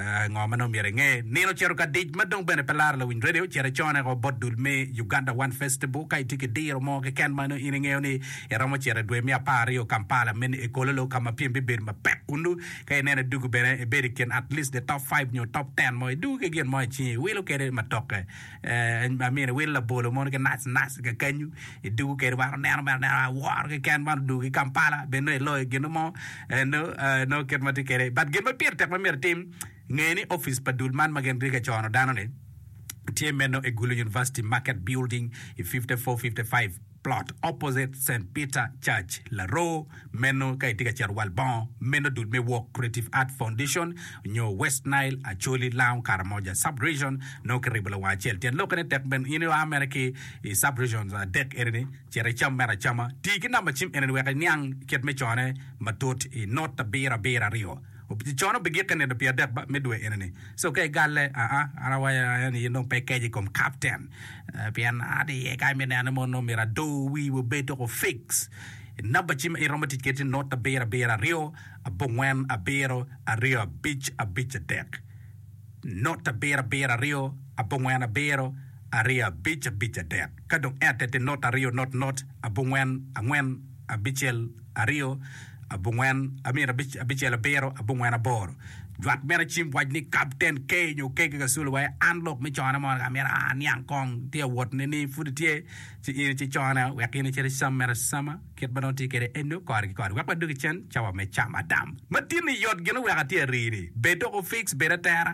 Ngo ma nongo myero inge? Nino ocito ka dic ma dong bene pe laro lawiny redio. Cit icone woko bot dul me Uganda One Festival ka itye ki diro mo keken ma nongo in ingeyo ni iromo cito i dwe me apar aryo Kampala me ni Ekololo ka ma pyem bibedo mapek kunnu. Ka ineno idugu bene ibed i kin at least the top five nyo top ten mo idugu ki gin mo i cingi iwilo kwede matoke. Amyero iwil labolo mono ki naci naci kakanyu idugu kede wan oneno mere anena aworo keken man odugu ki Kampala bed nongo iloyo gino mo nongo kit ma tye kede but gin ma pire tek ma myero itim nge ni opic pa dul man ma gin tye ka cono dano ni tye meno egulu University market building i 5455 Plot opposite Saint Peter Church, Laroo, meno ka itye ka cito wal bongo, meno dul me Walk Creative Art Foundation nyo West Nile, Acholi, Lango, Karamoja Sub-region, nongo kiribo lawang acel. Tyen lokkene tek bene, in ia mere ki i Sub-regions adek enini, cit icam mere acama. Ti ki namba cim enini wek iniang kit me cone matut i not abiro abiro aryo. Cono obigikke nino pi adek ba me dwe enini. So ka igalle, aa, an awaco aye ni in dong pe ikec i kom kapten, pien aadde iye ka imito neno ni mon nongo myero ado wii wa obed tuku fix i namba ci ma in iromo tic kwede tye not abiro abiro aryo abongwen abiro aryo abic abic adek. Not abiro abiro aryo abongwen abiro aryo abic abic adek. Ka dong ente tye not aryo not not abongwen angwen. abicel aryo abongwen I mean abicel abiro abongwen aboro jwak meno acim wac ni kapten ke nyo ke ki kaculu wa an lok me cone mo amyero aniang kong tye awot ne ni pud itye ci in ci cone wek in icit icam meno acama kit ma dong tye kede eno kore ki kore wek wa dog icen cawa me cam adam matini yot gin wek atye arini bed dok ofix bed atera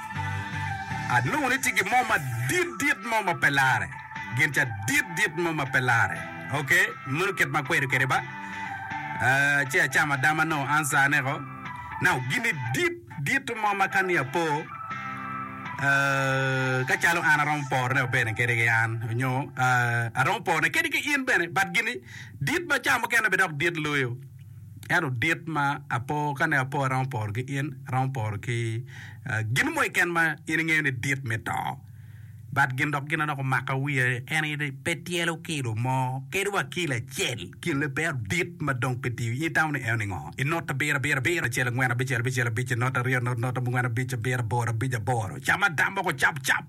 Anongo ni tye gin mo madit dit mo ma pe larre, gin ca dit dit mo ma pe larre. Ok, meno kit ma akwedo kwede ba. Ah, ci acamo adama nongo answer-neko. Now, gin-ni dit dit mo ma ka ni apo, ah, ka calo an aromo porone wa bene kede ki an, nyo, ah, aromo porone kede ki in bene, but gin-ni dit ma ca mukene bene dok dit loyo. Ento dit ma apo, ka ne apo aromo poro ki in, aromo poro ki gin mo keken ma in ingeyo ni dit me to. But gin dok gin anok omaka wiya en aye ni pe tyelo kilo mo kadi wa kilo acel kin libero dit ma dong pe tiyo. In itamo ni eno ningo? Inot abiro abiro abiro acel angwen abicel abicel abic inot aryo inot not angwen abic abiro aboro abic aboro cam adamoko cap cap.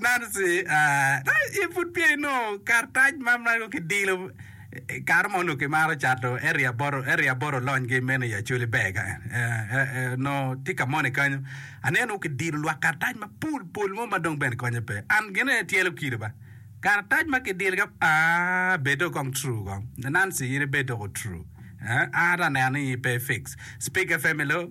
Nancy, Ee, pud peya inongo karatac ma meno kidilo. Kare mo onongo kimaro cato area aboro, area aboro olonygi meno i Acholi ber ka. Onongo tye ka moni kenyo, aneno onongo kidilo lwak karatac mapol pol mo ma dong bene konye pe. An gin aye tyelo kilo ba. Karatac ma kidilo ka, aa, bed dong kong true kong. Nancy, In ibed doko true. Ee, an atye ka neno ni in pe i fix. Speak FM, Hello.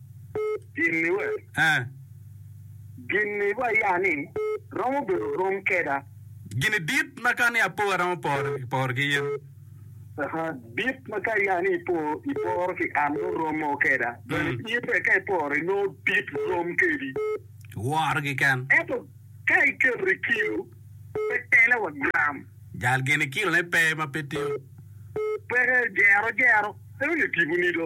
Gin-ni we? Ee. Gin-ni wa ya ni romo bedo rom keda. Gin-ni dit ma ka ni apo aromo poro ki in. Aha, dit ma ka ya ni ipo iporo ki an nongo romo keda, bene in bene ka iporo inongo dit rom kedi. Woro kiken. Ento ka iketo i kilo, pe tele wa gram. Jal gin-ni kilone pe ma pe tiyo. Peke, jero jero. Eno ni tipo nido.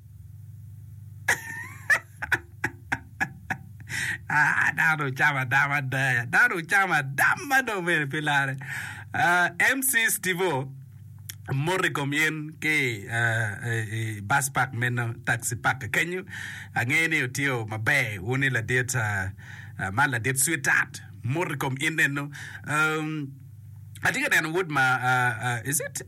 Ah, dano ocamo adama adaya. Dano ocamo adam ma dong mere pi lare. Ah, MC Stivo, mot i kom in ki ah, i i bus park meno, taxi park kenyo. Angeyo ni otiyo maber wuni ladit ah, ah, man ladit sweetheart. Mot i kom in eno. Um, atye ka neno wood ma ah, ah, is it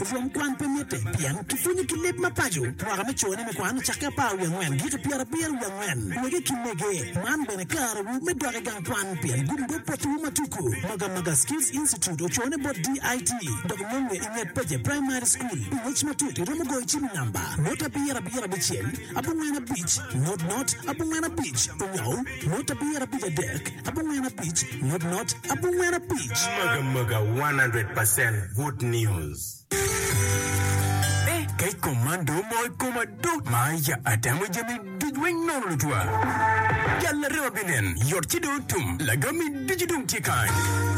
Rwom kwan pe mitte, pien kipwonyo ki leb ma paco. Mwaka me cone me kwan ocakke apar wiye angwen giko i pyerabiro wiye angwen. Wege ki mege, man bene karewu me dok i gang kwan, pien gumgo potiwu ma tuku. Magamaga Skills Institute ocone bot DIT, dok nonge i nget Peje Primary School. Pi ngec matut iromo goyo cim i namba, not abiro abiro abicel, abongwen abic, not not, abongwen abic, onyo. Mot abiro abic adek abongwen abic mot mot abongwen abic. Maga maga 100 percent good news. Eeh kec kom man do omoo i koma do maya atamo jami duc weng nono lutwa jal larema binen yot ci do otum lagami ducu dong tye kany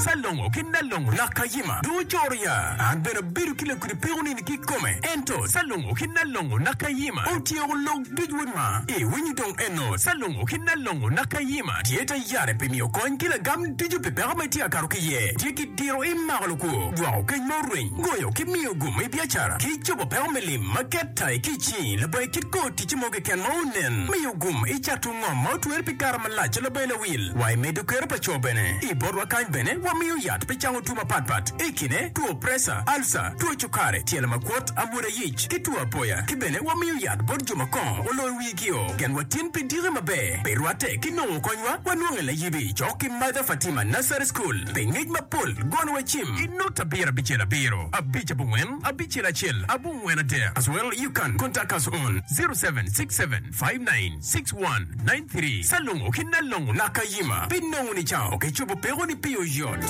ca longo ki nalongo laka yima do ocoro ya an bene abedo ki lakudi peko nini ki kome ento ca longo ki nalongo laka yima otyeko log Duc wod ma i winyi dong eno, Calungo ki Nalongo naka Yima tye ta yare pi miyo kony ki lagam ducu pi peko ma itye ka kato ki iye. Tye ki diro i mako lukwo, jwako keny ma orweny, goyo ki miyo gum i biacara, ki cobo peko me lim ma ket ta i kic-ci labongo i kit kor ticce mo keken ma onen. Miyo gum i cato ngom ma otwere pi kare malac labongo lawil wa i medo kero pa co bene. I botwa kany bene wamiyo yat pi cango two mapat pat i kine two preca, alca, two cukare, tyelo makwot, amwoda, ic, ki two apoya, ki bene wamiyo yat bot jo ma kongo oloyo wigio. Gen wa tin pi diki maber pi rwatte ki nongo konywa wanwonge layib i cok ki Mother Fatima Nursery School pi ngec mapol gono wa cim. I nut abiro abicel abiro abic abongwen abicel acel abongwen adek as well you can contact us on zero seven six seven five nine six one nine three Salongo ki Nalongo Nakayima pi nongo ni cao ki cobo peko ni pi oyot.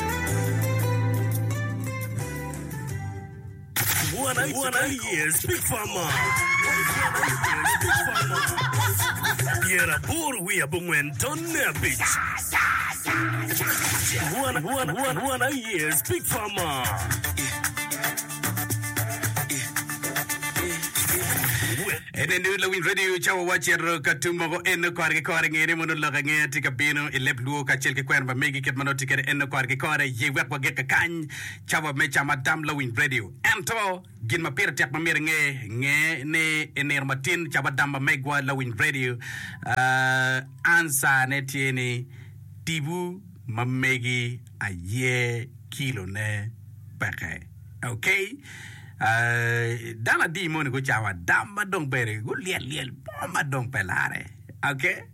Ene ni lawiny radio cawa wa cito ka tum mogo en kore ki kore ngene mono lok ange tye ka bino i leb lwo kacel ki kwena ma megi kit ma noti kede en kore ki kore ye wek wagik kakany Cawa me ca ma tam lawiny redio. Ento, gin ma pire tek ma myero inge, nge ni i nino matin cawa dam ma megwa lawiny redio, ansane tye ni tibu ma megi aye kilone peke. Ok? Dano adi moni gucawa dam ma dong bene gulyel lyel mo ma dong pe lare? Age.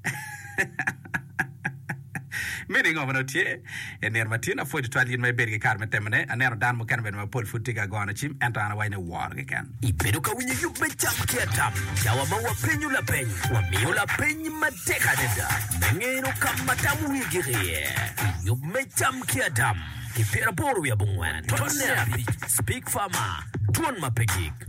Me ni ngo ma nongo tye? I nino ma tin, apwod tutwal in ma ibedo ki kare me temone. Aneno dano mukene bene mapol pud tye ka gono cim, ento an awaco ni wor keken. Ibedo ka winyo yub me cam ki atam? Cawa ma wapenyo lapeny, wamiyo lapeny matek adada me ngeno ka ma tam wigik iye. I yub me cam ki atam, ki pyeraboro wiye abongwen, tonne abic, Spig Farmer, Twon ma pe gik.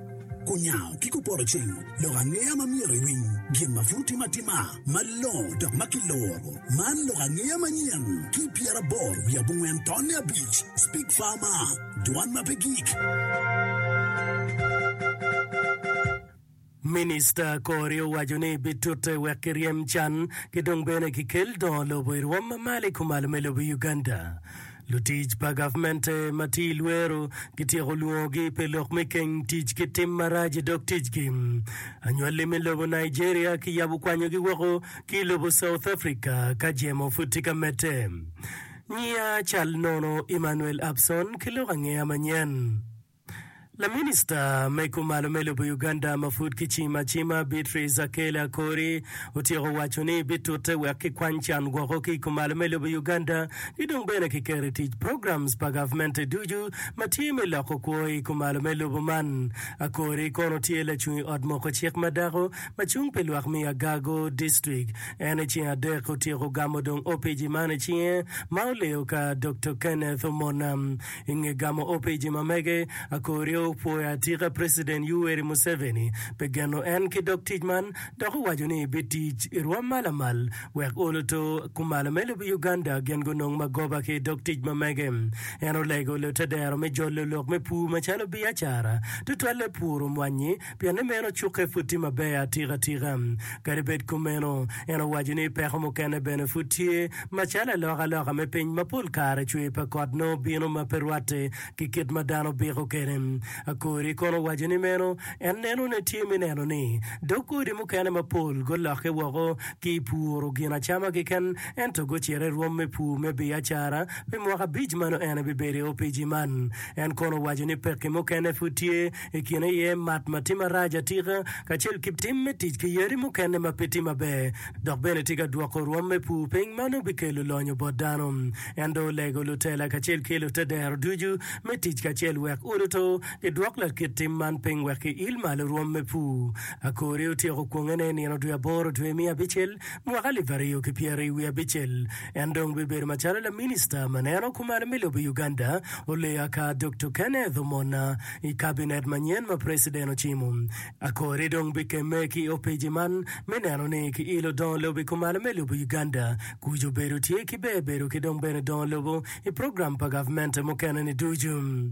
Kunyango ki kupoto cing, lok angeya ma myero iwiny, gin ma pud timo atima malongo dok ma kiloro. Man lok angeya manyen ki pyeraboro wiye abongwen tonne abic, Speak Farmer, Dwan ma pe gik. Minista Kori owaco ni bitute wek kiryem can ki dong bene kikel dongo lobo i rwom ma malo i kumalo me lobo i Uganda. Lutic pa gavmente ma tye i lwero gityeko lwongogi pi lok me keng tic ki tim marac i dog ticgi. Anywalli me lobo Nigeria kiyabo kwanyogi woko ki i lobo South Africa ka jemo pud tye ka medde. Nyiya cal nono Emmanuel Abson ki lok angeya manyen. Laminista me kumalo me lobo Uganda ma pud kicimo acima Beatrice Akello Akori otyeko waco ni bitute wek kikwany can gwoko ki i kumalo me lobo Uganda ki dong bene kiketo i tic programs pa gavmente ducu ma tye me loko kwo i kumalo me lobo man. Akori kono tye lacung i ot moko cik ma dako ma cung pi lwak me Agago district. En i ceng adek otyeko gamo dong opici man i cinge ma oleyo ka Doktor Kenneth Omona. I nge gamo opiji ma mege, Akorio opwoyo atika President Yuweri Museveni pi geno en ki dog tic man dok owaco ni bitic i rwom ma lamal wek oluto kumalo me lobo Uganda gin gunong magoba ki i dog tic ma mege. En olego lute dero me jolo lok me pur macalo biacara, tutwalle puro mwanyi, pienni meno cukke pud tye maber atika tika. Kadi bed kumeno, en owaco ni peko mukene bene pud tye, macalo alokaloka me piny ma pol kare cwer pa kot nongo bino ma pe rwatte ki kit ma dano biko kwede. Akori kono owaco ni meno en nenone tye me neno ni dog godi mukene mapol gulokke woko ki i puro gin acama keken ento gucito i rwom me pur me biacara pi mwaka abic ma nongo en bibedo i opic-ci man. En kono owaco ni pekki mukene pud tye i kine iye mat ma tye marac atika kacel ki tim me tic ki yadi mukene ma pe tye maber, dok bene tye ka dwoko rwom me pur piny ma nongo bikelo lonyo bot dano. En dong olego lutela kacel ki lute dero ducu me tic kacel wek uluto gidwok lakit tim man piny wek giil malo rwom me pur. Akori otyeko kwongene i nino dwe aboro dwe me abicel mwaka alip aryo ki pyeraryo wiye abicel. En dong bibedo macalo laminista ma neno kumalo me lobo i Uganda, Oleyo aka Dokto Kenneth Omona. i Kabinet manyen ma Preciden ocimo. Akori dong bikemme ki i opeci man me neno ni ki ilo dongo lobo i kumalo me lobo Uganda. Kuc obedo tye ki ber bedo ki dong bene dongo lobo i program pa gavmente mukene ni ducu.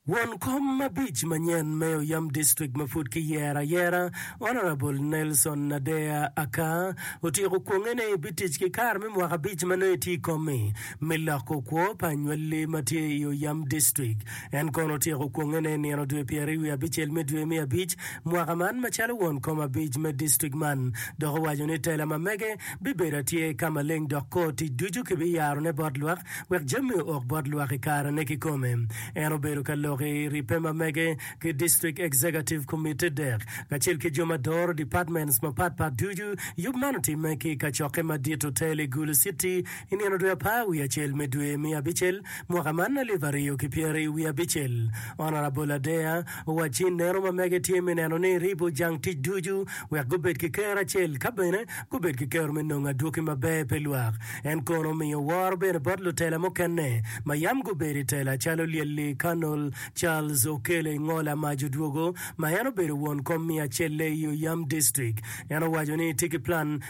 Won kom abic manyen me Oyam District ma pud ki yero ayera, Honourable Nelson Nadea Akaa, otyeko kwongene ni bitic ki kare me mwaka abic ma nongo etye i kom-mi. me loko kwo pa anywalli ma tye i Oyam District. En kono otyeko kwongene i nino dwe pyeraryo wiye abicel me dwe me abic mwaka man macalo won kom abic me district man dok owaco ni tela ma mege bibedo atyer ka maleng dok kor tic ducu kibiyarone bot lwak wek jami ook bot lwak i karene kikome. En obedo ka lok i ribbe ma mege ki District Executive Committee dek kacel ki jo ma doro departments mapatpat ducu. Yub man otimme ki i kacokke madit otel i Gulu City, I nino dwe apar wiye acel me dwe me abicel mwaka man alip aryo ki pyeraryo wiye abicel, Honourable Adea owacci ineno ma mege tye me neno ni ribo jang tic ducu wek gubed ki kero acel ka bene gubed ki kero me nongo adwoki maber pi lwak. En kono omiyo woro bene bot lutela mukene ma yam gubedo i tela calo Lyelli Colonel Charles Okele Ngola Maj Odwogo ma en obedo won kom me acelle i Oyam District. En owaco ni tye ki plan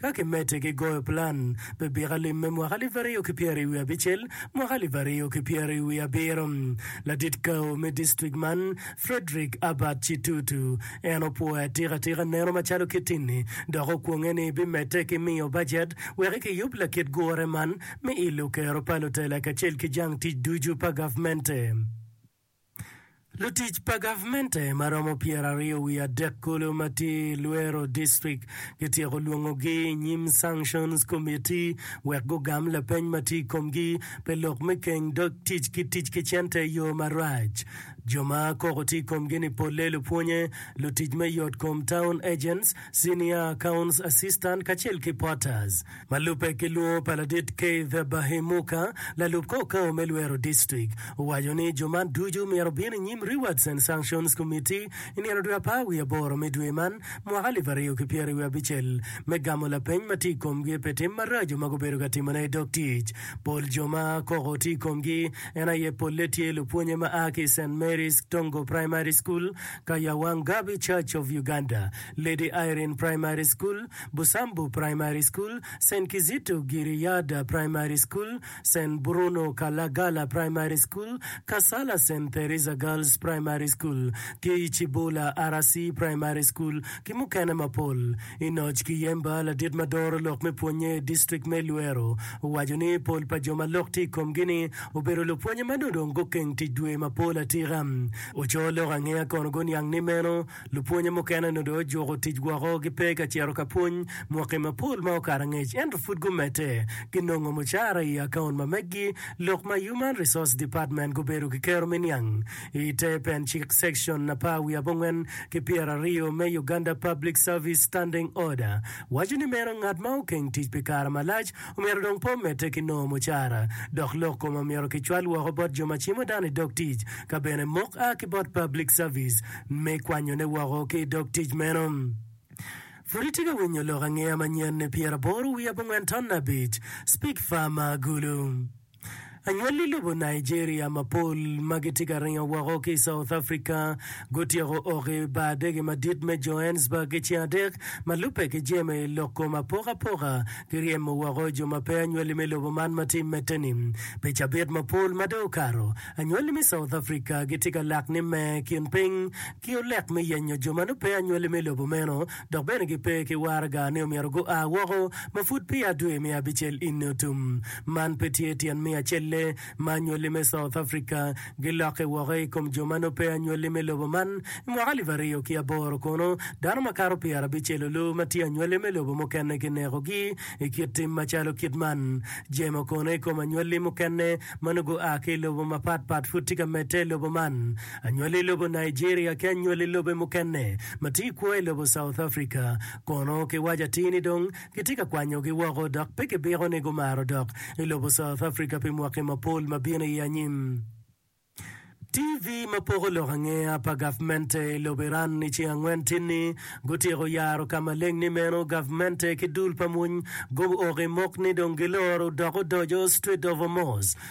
Ka kimedde ki goyo plan pi bika lim me mwaka alip aryo ki pyeri wiye abicel, mwaka alip aryo ki pyeri wiye abiro, ladit kawo me distrik man, Frederick Abbott Chitutu, en opwoyo atika tika neno macalo kit-ni dok okwonge ni bimedde ki miyo bajet wek kiyub lakit gure man me ilo kero pa lutela kacel ki jang tic ducu pa gavmente. Lutic pa gavmente ma romo pyeraryo wiye adek kulu ma tye i Luero District gityeko lwongogi i nyim Sanctions Committee wek gugam lapeny ma tye i komgi pi lok me keny dog tic ki tic ki cente i yo marac. Jo ma koko tye i komgi-ni polle lupwonye, lutic me yotkom, town agents, senior accounts assistant kacel ki porters. Ma lubbe ki lwor pa ladit Keith Bahemuka, lalub kor kor me lwero distrik, owaco ni jo man ducu myero obin i nyim Rewards and Sanctions Committee i nino dwe apar wiye aboro me dwe man mwaka alip aryo ki pyeri wiye abicel me gamo lapeny ma tye i komgi pi tim maraco ma gubedo ka timone i dog tic. Pol jo ma koko tye i komgi en aye polle tye lupwonye ma a ki i Saint Mary's Tongo Primary School, Kayawanggabi Church of Uganda, Lady Irene Primary School, Busambu Primary School, Sen Kizito Giriyada Primary School, Sen Bruno Kalagala Primary School, Kasala Sen Theresa Girls Primary School, tye i Cibola RC Primary School ki mukene mapol. Enoch Kiyemba, ladit ma doro lok me pwonye i district me Luero, owaco ni pol pa jo ma lok tye i komgi-ni obedo lupwonye ma nongo dong gukeng tic dwe mapol atika. Oco lok angeya kono guniang ni meno Lupwonye mukene onongo dong ojuko tic woko, gipe ka cito ka pwony mwaki mapol ma okato angec, ento pud gumedde. Ginongo mucara i akaun ma meggi. Lok ma Human Resource Department gubedo ki kero me niang i te pen cik Section apar wiye abongwen ki pyera aryo me Uganda Public Service Standing Order waco ni meno ngat ma okeng tic pi kare malac Omyero dong pe omedde ki nongo mucara, dok lok kome omyero kicwal woko bot jo ma cimo dano i dog tic, ka bene mok a ki bot Public Service me kwanyone woko ki i dog tic meno. Pud itye ka winyo lok angeya manyen-ni pyeraboro wiye abongwen ton abic? Speak Farmer Agulu. Anywalli lobo Nigeria mapol ma gitye ka ringo woko ki i South Africa gutyeko ok i bar adege madit me Johannesburg ki ceng adek ma lubbe ki jemi lok kom apokapoka ki ryemo woko jo ma pe anywalli me lobo man ma tye i mette-ni. Pi cabit mapol ma dong okato, anywalli me South Africa gitye ka lak ni me kin piny ki olek me yenyo jo ma nongo pe anywalli me lobo meno dok bene gipe ki waraga ni omyero gua woko ma pud peya dwe me abicel eni otum. Man pe tye tyen me acelle ma anywali me South Africa gilokke woko i kom jo ma nongo pe anywali me lobo man. I mwaka alip aryo ki aboro kono, dano makato pyerabicel olu ma tye anywali me lobo mukene kinekogi i kit tim macalo kit man. Jemo kono i kom anywali mukene ma nongo gua ki i lobo mapatpat pud tye ka medde i lobo man? Anywali i lobo Nigeria ki anywali i lobe mukene ma tye i kwo i lobo South Africa, kono ki waco atir ni dong kitye ka kwanyogi woko dok pe kibiko ni gumaro dok i lobo South Africa pi mwaki mapol ma bino i anyim. TV ma poko lok angeya pa gavmente i lobo Iran i ceng angwen tye ni gutyeko yaro ka maleng ni meno gavmente ki dul pa mony gum ok i mok ni dong giloro dok odoco Strait of Hormuz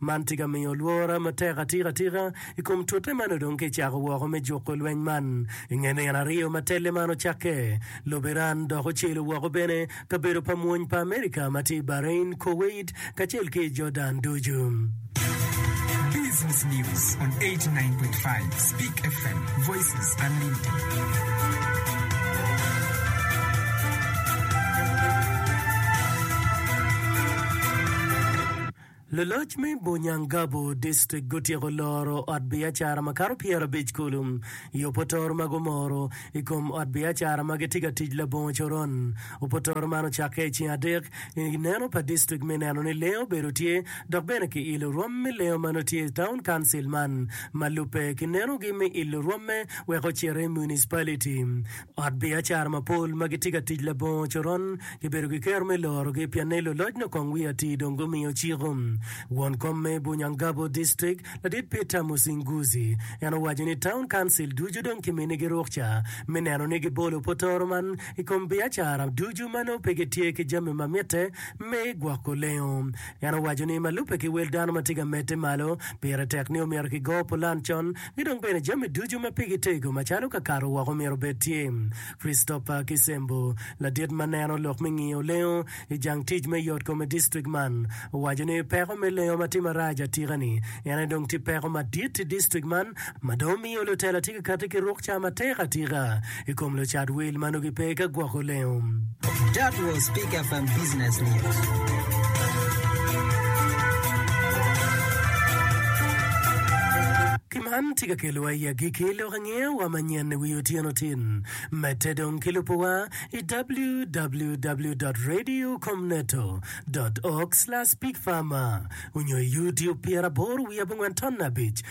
Man tye ka miyo lwora matek atika tika i kom tute man odong ka ecako woko me juko lweny man. I nge nino aryo ma telle man ocakke, lobo Iran dok ocelo woko bene kabedo pa mwony pa Amerika ma tye i Bahrain, Kuwait, kacel ki i Jordan ducu. Business news on eighty nine point five Speak FM, voices unlimited. Luloc me Bunyangabu District gutyeko loro ot biacara makato pyerabic kulu i opotoro ma gumoro i kom ot biacara ma gitye ka tic labongo coron. Opotoro man ocakke i ceng adek i neno pa district me neno ni lengo obedo tye dok bene ki ilo rwom me lengo ma nongo tye i Town Council man ma lubbe ki nenogi me ilo rwomme wek ocito i Municipality Ot biacara mapol ma gitye ka tic labongo coron gibedo ki kero me lorogi pien ni luloc nyo kong wiye atir dong gumiyo ciko. Won kom me Bunyangabo District, Ladit Peter Musinguzi, en owaco ni taun kancil ducu dong kiminigi rukca me neno ni gibolo potoro man i kom biacara ducu ma nongo pe gitye ki jami ma mitte me gwoko lengo. En owaco ni ma lubbe ki wel dano ma tye ka medde malo, pire tek ni omyero kigo pulan con ki dong bene jami ducu ma pigi tego macalo kakato woko myero obed tye. Christopher Kisembo, ladit ma neno lok me ngiyo lengo i jang tic me yotkom i distrik man, owaco ni peko me lengo ma tye marac atika ni en aye dong tye peko madit i distrik man ma dong miyo lutela tye ka kati ki rukca matek atika. i kom lucat wil ma nongo gipe ka gwoko lengo. Man tye ka kelowa i agikki lok angeya manyen i wi otyeno tin. Medde dong ki lubowa i www.radiocomneto.org/bigpharma onyo i YouTube pyeraboro wiye abongwen ton abic